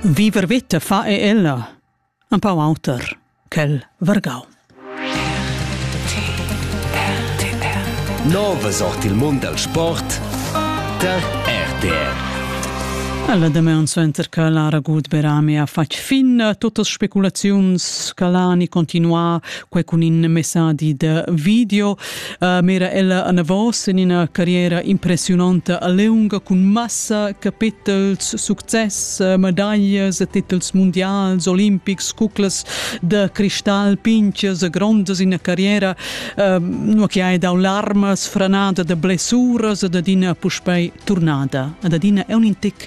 Viver vita fa e ella, empau auter quel vargau. Nova sort il mund al sport tar RTR. Alla demeun suenter che Lara Gudberami ha fatg fin totas speculaziuns che l'ha ni continuà quei cun in messadi de video Uh, mera ella anavos en ina carriera impressiunanta a leunga cun massa capitels, success, uh, medaglias e titels mundials, olimpics, cuclas da cristal pinches e grondas in carriera, uh, nu che hai dau larmas, franada da blessuras e da dina puspei turnada. Ad adina è un intic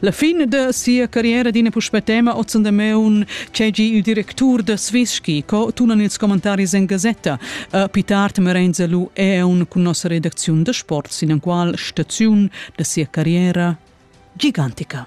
La fin da sia carriera d'ina puspè tema oz da meun tgegi il directur da Svischi, co tunan ils commentaris en gasetta. Uh, Pitart Merenza lu eun cun nossa redacziun da sport sin en qual staziun da sia carriera gigantica.